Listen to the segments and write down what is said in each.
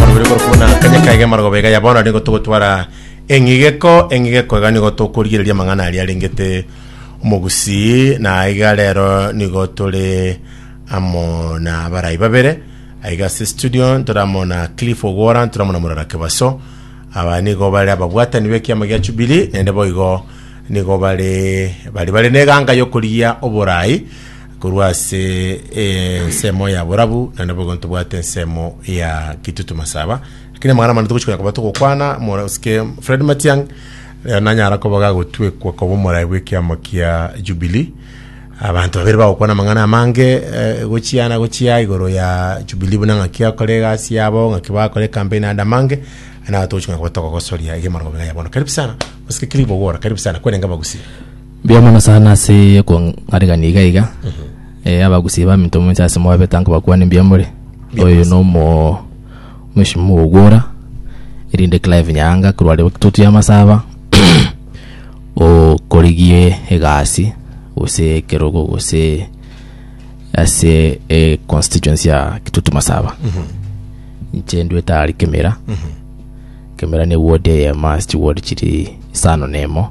Marobire korokuna kanya kaige marogoba iga ya bono nigo togotwara eng'igeko eng'igeko iga nigo tokorigereria amang'ana aria arengete omogusii na iga rero nigo tore amo na abarai babere aiga ase studio ntore amo na Cliff Ogwora ntore amo na Murara Kebaso aba nigo bare ababwatani b'ekiama gia Jubilee naende boigo nigo bare bari bare neganga yokorigia oborai Korwa ase ensemo ya borabu naende boigo ntobwate ensemo ya Kitutu Masaba, lakini amang'ana amane togochia konya koba togokwana. Omorasike Fred Matiang' rero nanyara koba gagotwekwa koba omorai bw'ekiamo kia Jubilee. Abanto babere bagokwana amang'ana amange eh, gochia na gochia igoro ya Jubilee buna ng'aki akore egasi yabo, ng'aki bakore ecampaign ande amange, naye togochia konya koba togogosoria iga emerongo iga ya bono. Karibu sana, Mosike Clive Ogwora, karibu sana, kwerenge abagusia. Mbuya mono sana ase okong'aregania iga iga. Eh, abagusi baminto moinse ase mwabe tanko bakwane mbuya more. Oyo no mo mheshimiwa ogwora erinde Clive Nyaanga korwa Rwakitutu ya Masaba okorigie egasi gose ekerogo gose ase e constituency ya Kitutu Masaba. Inche ndwete ari Kemera. Kemera ne ward eye must ward chiri isano na emo.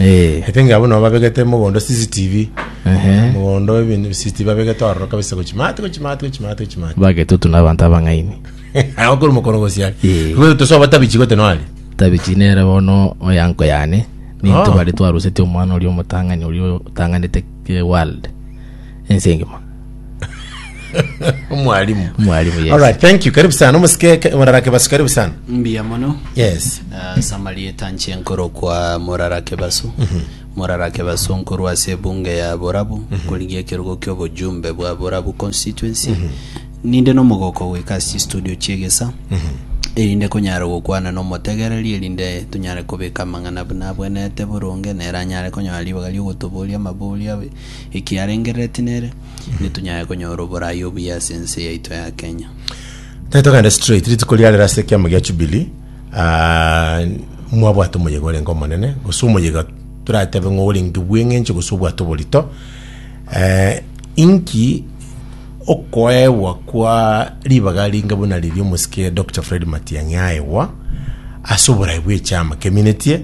Eh. I think abwo nabo babegete mogondo CCTV. Ehe. Mogondo ebintu CCTV babegete ororo kabisa gochi mati gochi mati gochi mati gochi mati. Bagetutu na abanto abang'aini. Aho kuri mokoro gosiari. Eh. Kwetu tosoba tabichi gote noari. Tabichi nere bono oyanko yane. Ninto Oh. bare twaruseti omwana oria omotang'ani oria otang'anete eh, world. Ense engima. Mwalimu. Mwalimu, yes. Alright, thank you. Karibu sana. Musike murarake basu karibu sana. mbuya mono Yes. Ah, samarieta nche nkoro kwa morarake basu Mhm. morarake basu nkoro ase ebunge ya borabu Mhm. korigia ekerogo kia obojumbe bwa borabu constituency Mhm. ninde nomogoko goika ase studio chiegesa Mhm. erinde konyara gokwana nomotegereri erinde tonyare kobeka amang'ana buna abwenete boronge nere anyare konyora ribaga riogotoboria amaboria ekiarengereretie nere, nitunyare konyora oboraai obuya ase ense yaito ya Kenya. Tari togende straight rituko ria rero ase ekiamo gia Jubilee ah, mwabwate omoyega orenge omonene gose omoyega toratebe ng'a orenge bw'eng'encho gose obwate oborito eh, inki okoegwa kwa ribaga ringa buna riria omosike Dr Fred Matiang'i aegwa ase oborai bw'echiama keminetie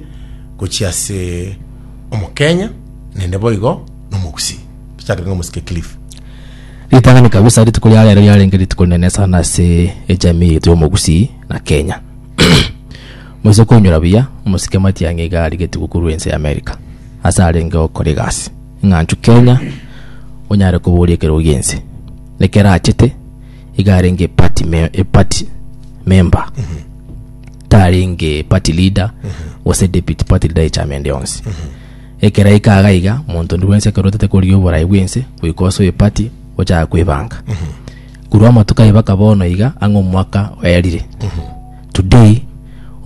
gochia ase Omokenya nende boigo nomogusii. Tochake ng'a omosike Cliff. Ritang'ani kabisa rituko ria rero riarenge rituko rinene sana ase ejamii yaito y'omogusii na Kenya. Moise koinyora buya, omosike Matiang'i iga arigetigwe korwa ense y'America ase arenge okora egasi eng'anchu Kenya onyare koboria ekerogo gi'ense nekerachete iga arenge eparty me- eparty member. tarenge party leader gose deputy party leader y'echamende yonsi ekero aika iga iga monto ondi bwensi ekero otete koria oborai bwense goika ase oye party ochaka kwebanga korwa amatuko aye baka bono iga ang'e omwaka oyarire today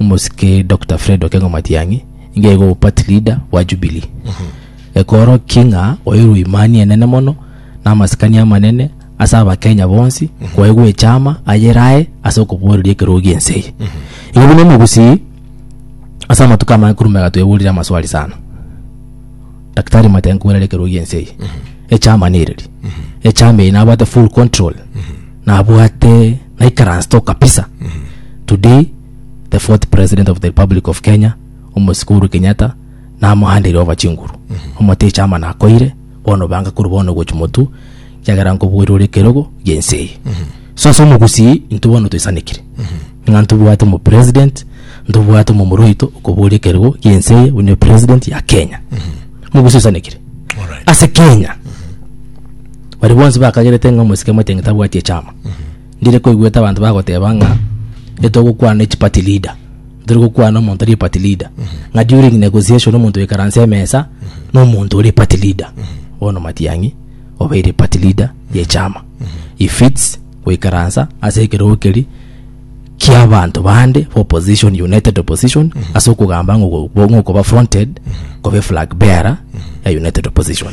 omosike Dr. Fred Okengo Matiang'i nigo aigwe party leader bwa Jubilee ekorokia ng'a oyo Rwimani enene mono na amasikani amanene ase abakenya bonsi kwaigwa echama ayere aye ase okoboreria ekerogo gi'ense eye igo buna omogusii ase amatuko amange korwa omega tweborire amaswali sana daktari matiga nkoborere ekerogo gi'ense eye echama nereri echama eye nabwate full control nabwate naikaransete oo kabisa today the fourth president of the republic of kenya omosika uhuru kenyatta namohandire over chinguru omote echama nakoire bono banga korwa bono gochia motu, ekiagera nkoboria ore ekerogo gi'ense eye. So ase omogusii, intwe bono toisanekire. Ng'a ntobwate omopresident, ntobwate omomura oito okoboria ekerogo gi'ense eye, buna epresident ya Kenya. Omogusii oisanekire. Alright. Ase Kenya, baria bonsi bakagerete ng'a omosike motieng'e tabwati echama. Ndire koigwete abanto bagoteba ng'a etogokwana ne chiparty leader, ntari gokwana omonto ore party leader. Ng'a during negotiation omonto oikaranse emesa na omonto ore party leader. Bono Matiang'i obeire party leader ye chama. He fits goikaransa ase ekerogo keri kia abanto bande ba opposition, united opposition, ase okogamba ng'o- ng'okoba fronted, kobe flag bearer ya united opposition.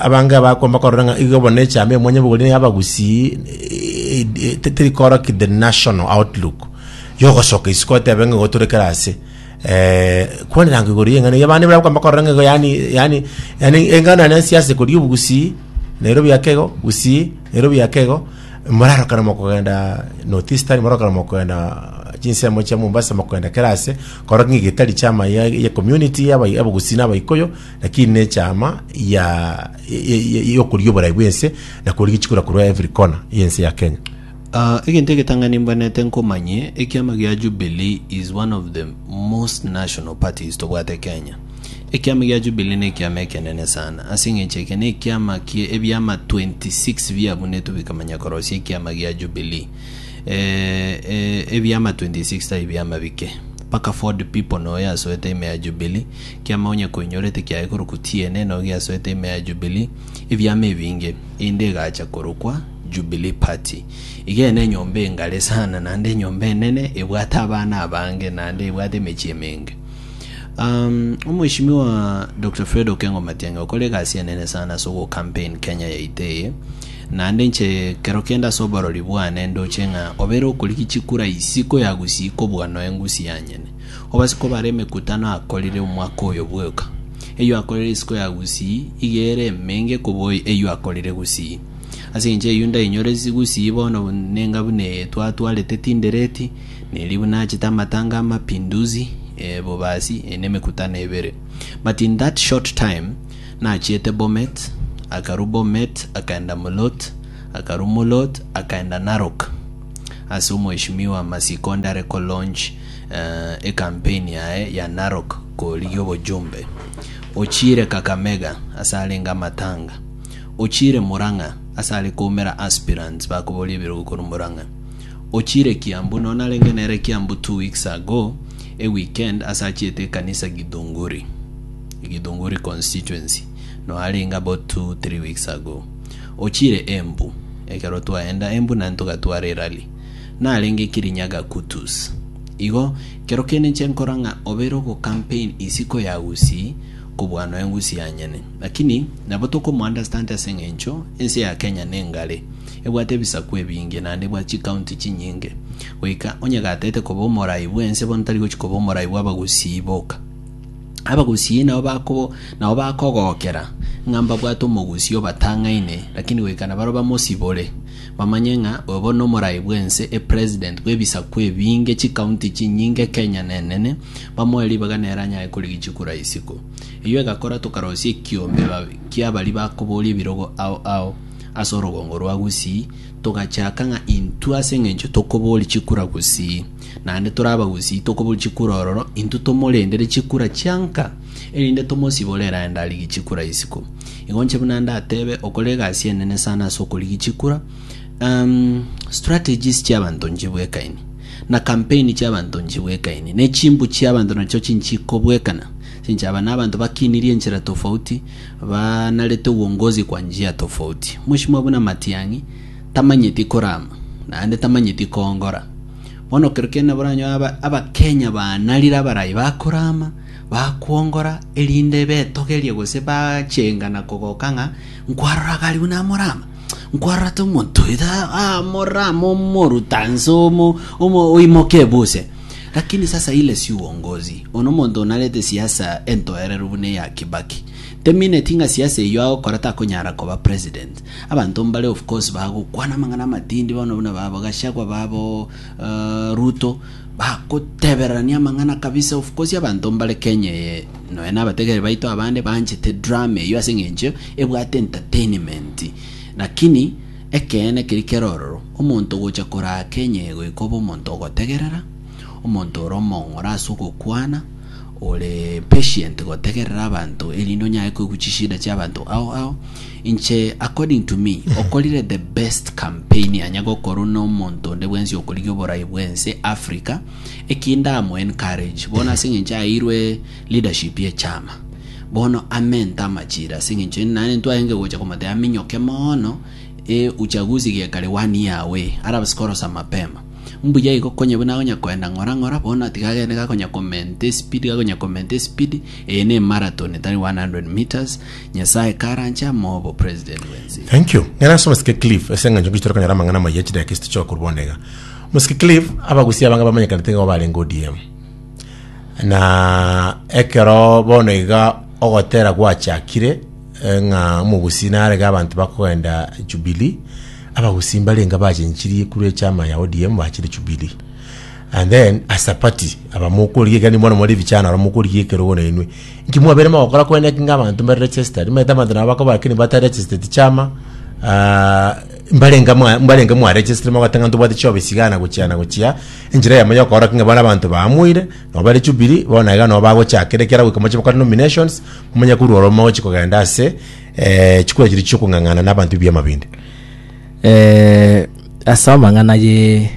Abange abakomba korora ng'a igo bono echama y'omwanyabogori na y'abagusii teri koroki the national outlook yogosoka isiko otebe ng'a igo tore kera ase kwanyerango igoro y'eng'ana eyio abande mbare bakomba korora ng'a igo yaani yaani yaani engano yaane ya siasa ekori obogusii Nairobi ake igo gusii Nairobi ake igo morarokana mokogenda North Eastern morarokana mokogenda chinsemo chia Mombasa mokogenda kera ase korora ng'a igo etari chama ya ya community y'aba abagusii na abaikuyu. Lakini nechama ya yokoria oborai bwense na koria gichikura korwa every corner yense ya Kenya. Uh, egento egetang'ani mbwanete nkomanye, ekiama gia Jubilee is one of the most national parties tobwate Kenya. Ekiama gia Jubilee ne ekiama ekenene sana, ase eng'encho eke ne ekiama kie ebiama 26 biabunetwe bikamanya korosia ekiama gia Jubilee. E, e, ebiama 26 tai biama bike. Paka Ford people noyo asoete ime ya Jubilee, Ekiama onye koinyorete kiaigorokwa tienena ogiasoete ime ya Jubilee, ebiama ebinge, einde egacha korokwa Jubilee Party. Igene enyomba engare sana naende enyomba enene ebwate abana abange naende ebwate emechie emenge. Um, Omweshimiwa Dr. Fred Okengo Matiang'i okore egasi enene sana ase ogocampaign Kenya yaito eye naende inche kero kende ase oborori bwane ndoche ng'a obere okorigia chikura isiko yagusia ikobua noe ngusi yanyene Obase kobara emekutano akorire omwaka oyo bwoka. Eyio akorire isiko ya gusii iga ere emenge kobua eyio akorire gusii. Ase engencho eyio ndainyore gusii bono nenga buna twatwarete tindereti, na erio buna nachete amatanga a Mapinduzi, e Bobasi, e nemekutano ebere. But in that short time, nachiete Bomet, akarwa Bomet akaenda Mulot, akarwa Mulot akaenda Narok ase omweshimiwa Masiko onde are ko launch ecampaign yaye ya Narok korigia obojumbe, ochiire Kakamega ase arenge amatanga, ochiire Murang'a ase are koumera aspirants bakoboria ebirogo korwa Murang'a, ochiire Kiambu nonya narenge nere Kiambu two weeks ago e weekend ase achiete ekanisa Githunguri, Githunguri constituency nonya arenge about two, three weeks ago. Ochiire Embu ekero twaenda Embu naende togatwara erally. narenge Kirinyaga Kutus. Igo kero kende inche nkora ng'a obere ogocampaign isiko ya Gusii kobua noe Gusii yanyene. Lakini nabo tokomounderstand ase eng'encho ense ya Kenya nengare, ebwate ebisaku ebinge naende bwa chicounty chinyinge, goika onye gatete koba omorai bw'ense bono tari gochi koba omorai bw'Abagusii boka. Abagusii nabo bakobo nabo bakogokera ng'a mbabwate Omogusii obatang'aine, lakini goika nabaro bamosibore. Bamanye ng'a obo nomorai bw'ense e president bw'ebisaku ebinge chikaunti chinyinge Kenya nenene bamoe ribaga nere anyare korigia chikura isiko. Eyio egakora tokarosia ekiombe kia baria bakoboria ebirogo ao ao ase orogongo rwa Gusii togachaka ng'a intwe ase engencho tokoboria chikura Gusii naende tore abagusii tokoboria chikura ororo intwe tomorendere chikura chianka erinde tomosibore eraende arigie chikura isiko. Igo inche buna ndatebe, okore egasi enene sana ase okorigia chikura, um, strategies chi'abanto nchibwekaini, na campaign chi'abanto nchibwekaini, ne chimbu chi'abanto nacho chinchikobwekana, chinchaba n'abanto bakinirie enchera tofauti, banarete uongozi kwa njia tofauti. Mheshimiwa buna Matiang'i, tamanyeti korama, naende tamanyeti koongora. Bono kero kiane nabo oranyoe aba- Abakenya baanarire abarai bakorama, Bakwongora, erinde betogerie gose bachenga na kogoka ng'a, Nkwarora Galiu na Amorama? Nkwarora ata omonto oyo ta Amorama omoruta nse omo, omo oimoka ebuse? Lakini sasa ile si uongozi. Ono omonto narete siasa entoereru buna eya Kibaki. Temineti ng'a siasa eyio agokora takonyara koba president. Abanto mbare of course bagokwana amang'ana amatindi bono buna babo Gachagua babo uh, Ruto Bagotebererania amang'ana kabisa of course abanto mbare Kenya eye nonya na abategeri baito abande banchete drama eyio ase eng'encho ebwate entertainment lakini ekeene keri kere ororo omonto gocha koraa Kenya eye goika obe omonto ogotegerera omonto ore omong'ora ase ogokwana ore patient gotegerera abanto erinde onyare koigwa chishida chia abanto ao ao Inche according to me okorire the best campaign anya gokorwa na omonto onde bwensi okorigia oborai bwense Africa eki ndamu encourage bono ase eng'encho aeirwe leadership ye chama bono amente amachira ase eng'encho ende naende ntwaenge gocha komotebia aminyoke mono e uchaguzi gekare one year away arabase korosa mapema mbuya igo konye buna agonya koenda ng'ora ng'ora bono natiga agende gakonya comment espeed gakonya comment espeed eye ne marathon tari 100 metres Nyasaye karanche amoe obo president bwensi. Thank you. Ng'ana ase Omosike Cliff ase eng'encho nkiche tore konyora amang'ana amaya chidakika echio tichoka korwa bono iga. Omosike Cliff, abagusia abange bamanyekanete nigo barenge ODM. Na ekero bono iga ogotera gwachakire eh, ng'a omogusi narege abanto bakogenda Jubilee, abagusi mbarenge abachenchirie korwa echama ya ODM bachire Jubilee. And then as a party, abamokorigia ekero nimwana mwari ebichana abamokorigia ekerogo nainwe. Inki mwabere mogokora kwene eki ng'a abanto mbare registered? Maete abanto nabo bakoba lakini bata registered chiama ah, mbarenga mwa- mbarenga mwaregistire mogoteba ng'a ntobwate chiofisi iga na gochia na gochia enchera yamo ya okora ki ng'a bare abanto baamoire nabo bare jubilee bono iga nabo bagochakera ekiara goika moche bakore nominations momanye korwa oro mogochi kogenda ase eh, chikura chiria chiokong'ang'ana na abanto ebiama binde Eh, ase amang'ana ye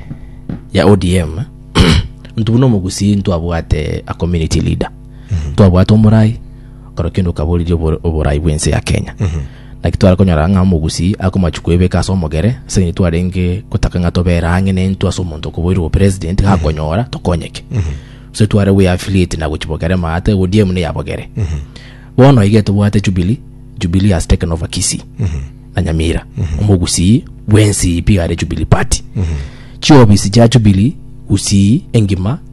ya odm ntu buna omogusii ntwabwate a community leader twabwate omorai, ekero kende okaboriria obo- oborai bw'ense ya Kenya. Naki tware konyora ng'a omogusii akomachu kwebeka ase omogere, ase eng'encho twarenge gotaka ng'a tobere ang'e nentwe ase omonto okoboirwe obo president, gakonyora tokonyeke. Gose tware gwe affiliate na gochi bogere maate, ODM ne ya bogere. Bono iga tobwate Jubilee, Jubilee has taken over Kisii na Nyamira. Omogusii bw'ense eye pi are Jubilee party. Chiofisi chia Jubilee, Gusii engima,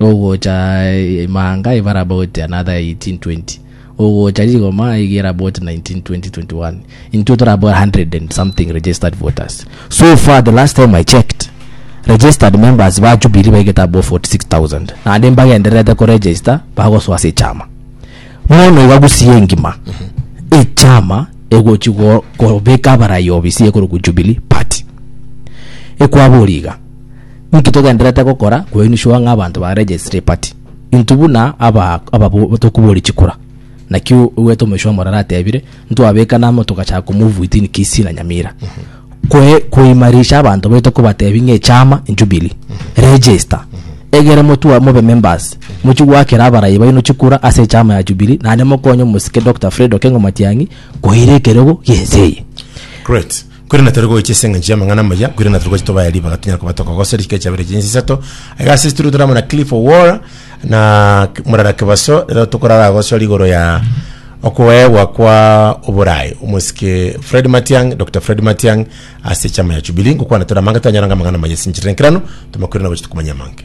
Ogocha ime anga ibe arabout another 18 20 ogocha rigoma iga ere about 19 20 21 intwe tore about 100 and something registered voters so far the last time i checked registered members ba jubilee baigete above 46000 naende mbagendererete kuregister bagosoa ase echama bono iga gusii engima echama egochi go- kobeka abarai obisi ekorokwa jubilee party ekwabori iga Ninki togendererete gokora koinishwa ng'a abanto ba registry party? Intwe buna aba ababo tokoboria chikura. Naki oigwete omoisha omoro aratebire, ntwabeka namo togachaka komove within Kisii na Nyamira. Koe koimarisha abanto baito kobatebia ng'a echama Jubilee. Register. Egere motwa mobe members. Mochie gwakera abarai baino chikura ase echama ya Jubilee naende mokonye omosike Dr. Fred Okengo Matiang'i koira ekerego gi'ense eye. Great. Korende tari goicha ase engencho y'amang'ana amaya, korende tari goicha tobaye ribaga tonyare koba tokogosoria chikera chiabere chinse isato. Iga ase studio tore amo na Cliff Owora na K- Murara Kibaso, rero tokorara gosoria igoro ya okoegwa kwa oborae omosike Fred Matiang, Dr. Fred Matiang ase chama ya Jubilee. Ngokwana tore amange twanyora ng'a amang'ana amaya ase enchera enkerano, tomakwire na gochia tokomanya amange.